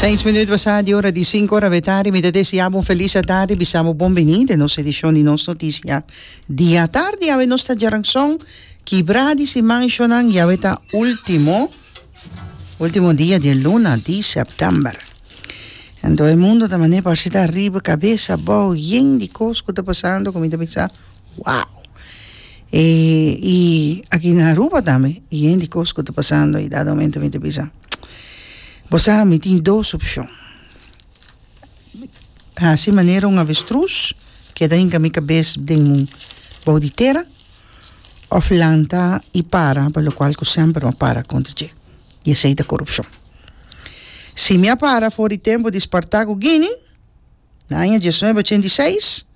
Seis minuut basa di ora di sinku ora awetardi mi ta desia bo un felis atardi bisa bo bon bini den nos edishon di nos notisia di atardi awe nos ta djaran son kibra di siman shonan y awe ta ultimo ultimo dia di e luna di september anto e mundo ta mane parse ta riba kabesa abou yen di kos ku ta pasando ku mi ta bisa Wow! E i aki na Aruba tambe, i yen dikos ku ta pasando, i dado momento mi ta bisa, bo sa, mi tin dos opshon, hasi manera un avestrus, keda hinka mi kabes den mun, bou di tera, òf lanta i para, pa lo kual ku semper bo para kontra dje, i esei ta korupshon. Si mi a para for di tempu di spartá ku Gini, Na aña diesnuebe ochenta i seis,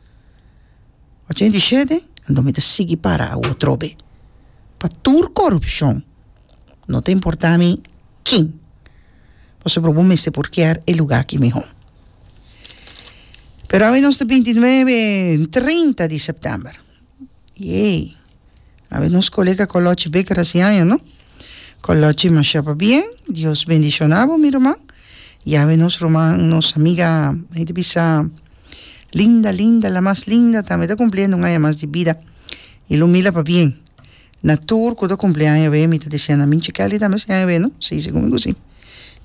ochenta i shete, anto mi ta sigui para awo trobe. Pa tur korupshon, no ta importá mi kin, pasobra bo mester por kier e lugá ki mihó. Pero awe nos ta bintinuebe, trinta di sèptèmber Yey a ver nos colega colochi be graciaña no colochi masha pabien dios bendiciona bo mi ruman y awe nos ruman nos amiga he ta bisa linda linda la mas linda tambe ta cumpliendo un aña mas di bida y lo mira pabien. Na tur cu ta cumpli aña wey mi ta diciendo na minchi Kelly tambe si aña wey no? Si segun mi cu si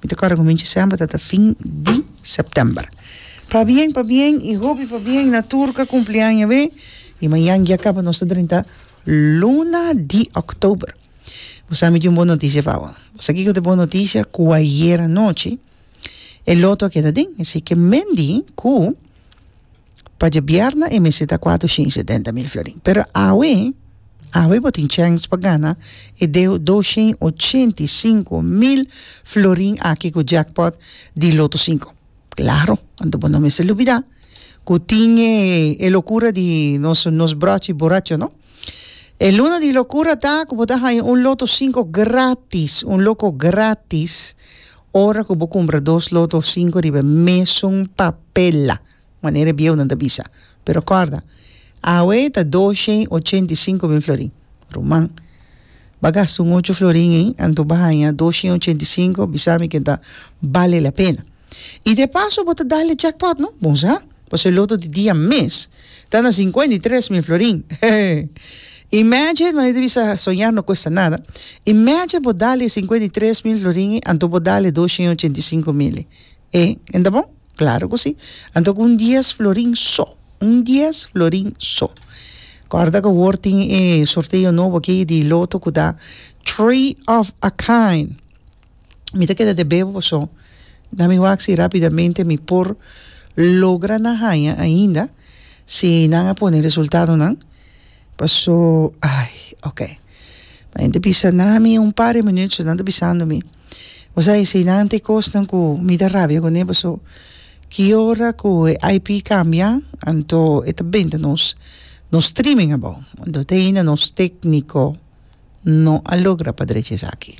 mi ta corda cu minchi semper ta ta fin di september pabien pabien y hopi pabien na tur cu a cumpli aña wey y mañan guia caba nos ta drenta luna di october bo sa mi tin un bon noticia pa bo bo sa kico ta e bon noticia cu ayer anochi e loto a keda aden asiki Mendy cu Pa djabierna e mester ta kuatu shin i setenta mil florin. Pero awe, awe bo tin chèns pa gana e deu dos shin i ochenta i sinku mil florin aki ku jackpot di loto sinku. Klaro, anto bo no mester lubidá ku tin e e lokura di nos nos bròchi boracho, no? E luna di lokura ta ku bo ta haña un loto sinku gratis, un loko gratis, ora ku bo kumpra dos loto sinku riba e mesun papel. manera e bieunan ta bisa. Pero kòrda, awe ta doshen ochenta i sinku mil florin. Ruman, ba gasta un ocho florin ei, anto ba haña doshen ochenta i sinku, bisa mi ke ta bale la pena. I de paso bo ta dal e jackpot, no? Bon sa, pasobra e loto di dia mes ta na sinkuenta i tres mil florin. Heheh! Imagine, manera ta bisa soñar no kuesta nada, imagine bo dal e sinkuenta i tres mil florin ei, anto bo dal e doshen ochenta i sinku mil ei. E, en ta bon? Claro cu si. Anto cu un dies florin so. Un dies florin so. Corda cu awor tin e sorteo nobo aqui di loto cu ta three of a kind. Mi ta keda te beba paso na mi wak si rapidamente mi por logra na haya ainda si nan a pone resultadonan. Paso ay ok ma nan ta bisa na mi un par de minüt so nan ta bisando mi bo sa hesei nan te kosnan ku mi ta rabia kuné paso ki ora ku e IP kambia anto e ta benta nos nos streaming abou anto te ainda nos tekniko no a logra pa drecha esaki.